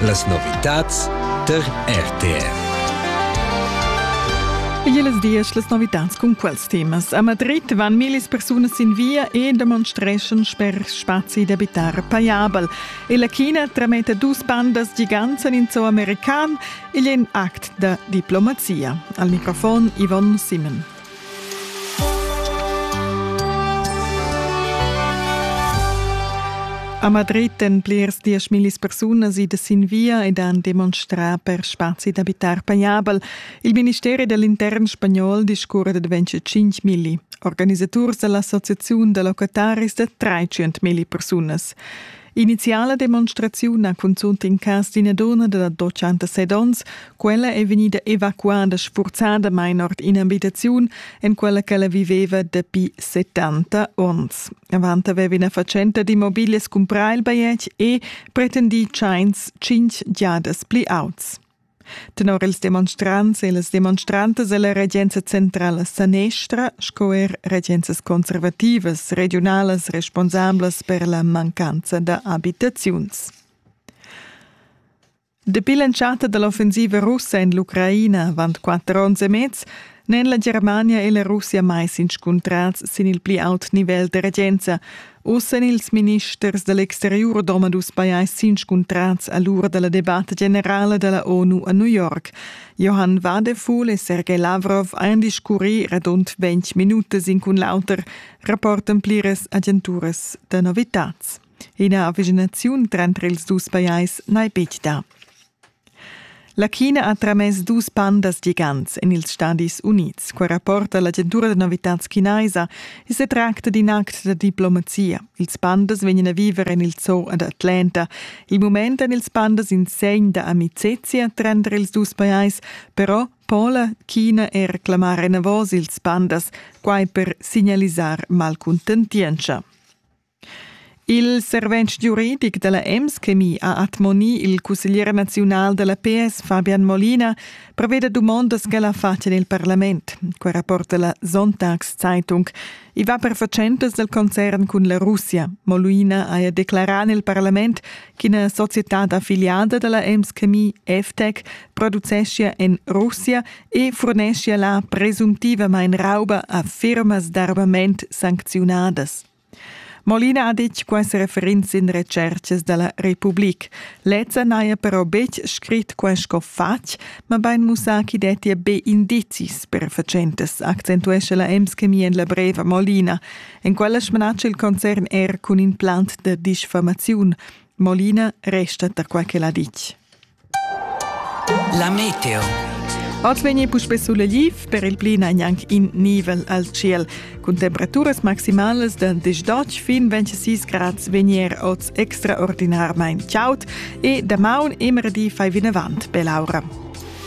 Las novitads tar RTR. Igls dias las novitads cun quels temas. A Madrid van millis persunas sin via e demonstreschan sper spazi d'abitar paiabel. E la China trametta dus pandas gigants en in zoo american igl è in act da diplomazia. Al microfon Yvonne Simon. A Madrid èn plirs dieschmillis persunas idas sin via ed han demonstrà per spazi d'abitar pajabel. Il ministeri da l'intern spagnol discurra d'adventure 5 milli. Organisaturs da l'associaziun da locataris da 300 milli persunas. Iniziala demonstraziun ha cunzunt in cas d'ina donna da 86 onns. Quella è vegnida evacuada sfurzadamain ord in'abitaziun, en quella ch'ella viveva dapi 70 onns. Avant aveva ina fatschenta d'immobiglias cumprà il bajetg e pretendì tschains tschintg giadas pli auts. Tenor ils demonstrants e las demonstrantas è la regenza centrala sanestra sco er regenzas conservativas regiunalas responsablas per la mancanza da abitaziuns. Dapi l'entschatta da l'offensiva russa en l'Ucraina avant quatter onns e mez N'èn la Germania e la Russia mai s'inscuntrads sin il pli aut nivel da regenza. Uss èn ils ministers da l'exteriur domadus pajais s'inscuntrads a l'ura da la debatta generala da la ONU a New York. Johann Wadefuhl e Sergei Lavrov han discurrì radund ventg minutas in cun l'auter, rapportan pliras agenturas da novitads. Ina avvicinaziun tranter ils dus pajais n'hai betg dà. La China ha tramess dus pandas gigants en ils Stadis Unids. Quai rapporta l'agentura da novitads chinaisa. I sa tracta d'in act da diplomazia. Ils pandas vegnan a viver en il zoo ad Atlanta. Il mument èn ils pandas in segn da amicizia tranter ils dus pajais, però Pola, China e reclamar enavos ils pandas, quai per signalisar malcuntentientscha. Il servent giuridic dalla Emschemie ha admonì il cusseglier naziunal dalla PS Fabian Molina preveda dumondas ch'el ha fatg en il parlament. Quei rapporta la Sonntagszeitung. I va per fatschentas del concern cun la Russia. Molina haja declarà nel parlament ch'ina societad affiliada dalla Emschemie FTEC produceschia en Russia e furneschia la presumptivamain rauba a firmas d'armament sancziunadas. Molina ha ditg quests referents in retschertgas da la Republik. Lezza n'haja però betg scrit quai sco fatg, mabain mussà ch'i dettia be indizis per fatschentas, accentuescha la Emschemie en la brev a Molina. En quella smanatscha il concern er cun in plant da disfamaziun. Molina resta tar quai ch'el ha ditg. La meteo. Oz vegni puspè suleliv, per il pli gnanc in nivel al ciel. Cun temperaturas maximalas da 18 fin 26 grads vegnier oz extraordinarmain chaud e damaun immer di fai vinavant per l'aura.